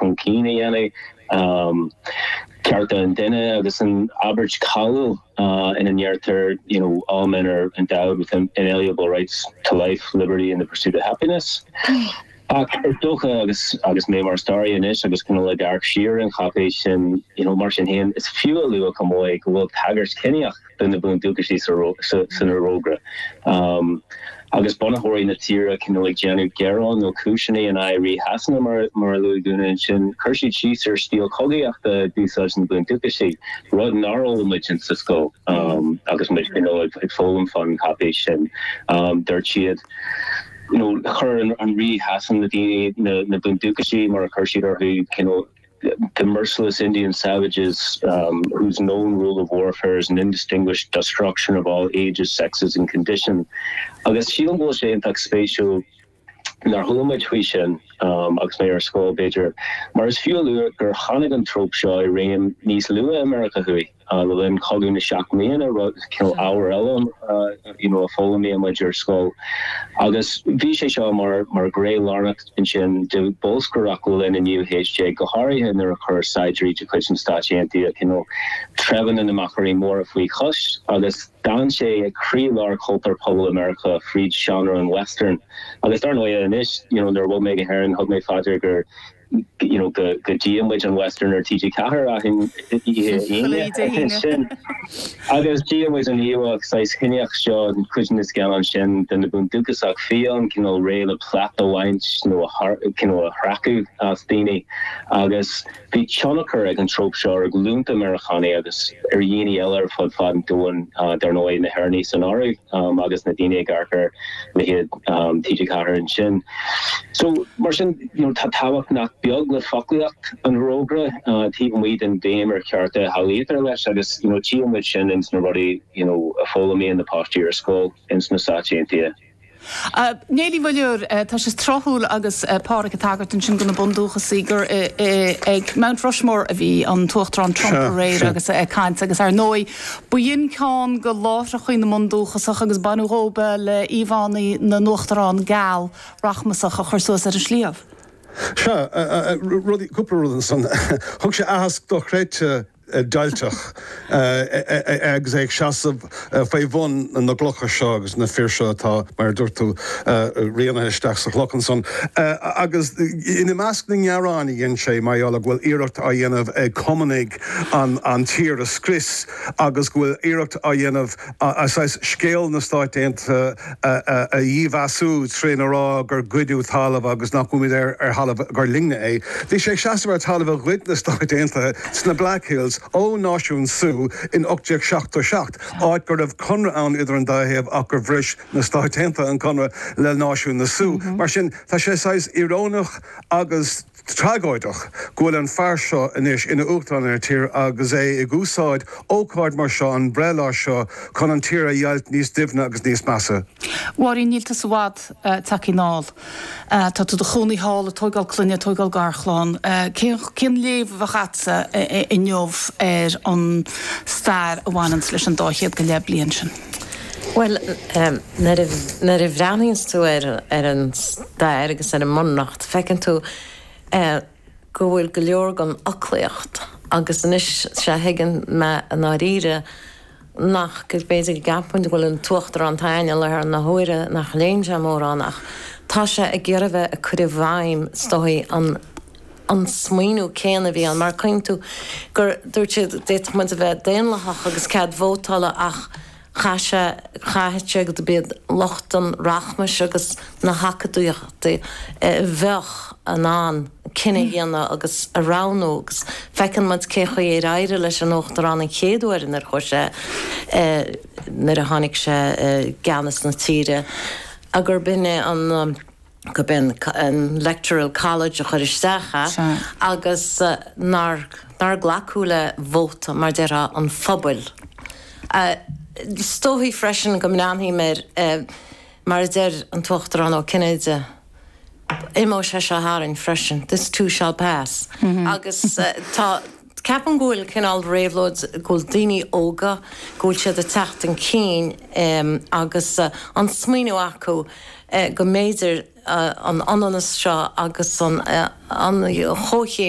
chun cinn a dhéanamh, cearta an duine agus an abairt cháiliúil ina ndeirtear you know all men are endowed with inalienable rights to life, liberty and the pursuit of happiness. Ach is dócha agus agus mé mar staraí anois agus cineál ag amharc siar ar an cháipéis sin you know mar sin féin is fiú a lua chomh maith go bhfuil tagairt chiníoch de na bundúchasaigh san Fhorógra, agus bunaitheoirí na tíre cineál ag déanamh gearáin nó cúiseanna in aghaidh Rí Shasana, mar a luaigh Úna ansin, chuir siad síos ar stíl chogaíochta a d'úsáid na bundúchasaigh, rud nár fhoghlaim muid sa scoil agus muid cineál ag foghlaim fán cháipéis sin. Dúirt siad, chuir Rí Shasana na bundúchasaigh mar a chuir siad orthu, cineál, the merciless Indian savages whose known rule of warfare is an undistinguished destruction of all ages, sexes and condition agus sílim go bhfuil sé iontach spéisiúil nár chuala muid faoi sin agus mé ar scoil b'fhéidir mar is fiú a lua gur tháinig an tróp seo i réim níos luaithe i Meiriceá Thuaidh. Le linn Chogadh na Seacht mBliana, rud, cineál, ábhar eile you know a d'fhoghlaimíodh muid ar scoil agus bhí sé seo mar, mar ghné lárnach ansin de bholscaireacht le linn an naoú haois déag, go háirithe nuair a chuir saighdiúirí de chuid na Stát Aontaithe you know treibheanna na Machairí Móra faoi chois agus d'fhan sé ag croílár chultúr pobail i Meiriceá fríd seánra an Western. Agus dar ndóighe anois you know nuair a bhog mé go hÉirinn, thug mé fá dear gur. you know, go, go dtíonn muid an Western ar TG4 achan oíche Aoine, sin, agus tíonn muid an íomhá, saghas chiníoch seo, i gcuid de na scannáin sin den bhundúchasach fiáin, cineál réidh le plait a bhaint nó a, you know, a shracadh as daoine, agus bhí tionchar ag an tróp seo ar ghlúnta Meiriceánach agus ar dhaoine eile ar fud fad an domhain, dar ndóigh na hÉireannaigh san áireamh. agus na daoine ag amharc ar leithéid TG4 ansin. So, mar sin, tá tábhacht nach beag le foclaíocht an fhorógra taobh amuigh den bhéim ar chearta a shamhlaítear leis agus tchífidh muid sin ins na rudaí a fhoghlaimíonn na páistí ar scoil ins na Stáit Aontaithe. A Mhéabh Ní Mhuilleoir, Tá sé tráthúil agus Pádhraic ag tagairt ansin do na bundúchasaigh gur ag Mount Rushmore a bhí an tUachtarán Trump aréir agus ag caint agus, ar ndóigh, B'in ceann de láithreacha na mbundúchasach agus baineadh díobh í le íomhánna na n-uachtarán geal rachmasach a chur suas ar an sliabh. Sea, cúpla rud ansan. Thug sé aitheasc dochreidte deighilteach agus é ag seasamh faoi bhun na gcloch seo agus na fir seo atá, mar a dúirt tú, rianaithe isteach sa chloch ansan. Agus i measc na ngearán a dhein sé mar gheall go bhfuil iarracht á dhéanamh ag cumannaigh, an tír a scrios agus go bhfuil iarracht á dhéanamh saghas scéal na Stáit Aontaithe a dhímheasú trína rá gur goideadh talamh agus nach bhfuaimid ar thalamh gur linne é. Bhí sé ag seasamh ar thalamh a ghoid na Stáit Aontaithe sna Black Hills ó Náisiún Sioux in 1877, áit go raibh conradh ann idir an dá thaobh ach gur bhris na Stáit Aontaithe an conradh le Náisiún na Sioux. Mar sin, tá sé saghas íoróineach agus. tragóideach go bhfuil an fear seo anois ina Uachtarán ar an tír agus é ag úsáid ócáid mar seo, an breithlá seo, chun an tír a dheighilt níos doimhne agus níos measa. A Mháirín, níl tusa i bhfad tagtha anall. Tá tú i do chónaí thall, ag tóigeáil clainne, ag tóigeáil garchlainne. Cén, cén léamh a bheadh agatsa inniu ar an stair a bhaineanns leis an dá chéad go leith bliain sin? Bhuel, nuair a bhreathnaíonns tú ar an stair agus ar an mbunreacht, feiceann tú go bhfuil go leor den fhoclaíocht, agus anois, sea, thuigeann mé i ndáiríre nach, gur féidir go gceapfainn go bhfuil an tUachtarán atá ann i láthair na huaire nach léann sé mórán, ach tá sé ag iarraidh bheith ag cur i bhfeidhm, is dóigh, an. an smaoineamh céanna a bhí ann. Mar, cuimhníonn tú gur dúirt sé, d'fhéadfadh muid a bheith daonlathach agus cead vótála ach caithfidh sé, caithfidh sé gurb iad lucht an rachmais agus na hacadúlachta a bheadh in ann cinneadh a dhéanamh agus a roghnú agus feiceann muid cén chaoi ar éirigh leis an uachtarán an chéad uair nuair a chuaigh sé, nuair a tháinig sé i gceannas na tíre, gurb in é an. gurb in an electoral college a chur isteach agus nár glacadh le vóta, mar déarfá, an phobail. Is dóigh freisin go mbreathnóidh mé air mar a deireadh an tUachtarán Ó Cinnéide, imeoidh sé seo tharainn freisin, this too shall pass, agus tá, Ceapaim go bhfuil cineál réabhlóid, go bhfuil daoine óga, go bhfuil siad ag teacht chun cinn agus an smaoineamh acu go mb'fhéidir an comhionannas seo agus an chomhchéim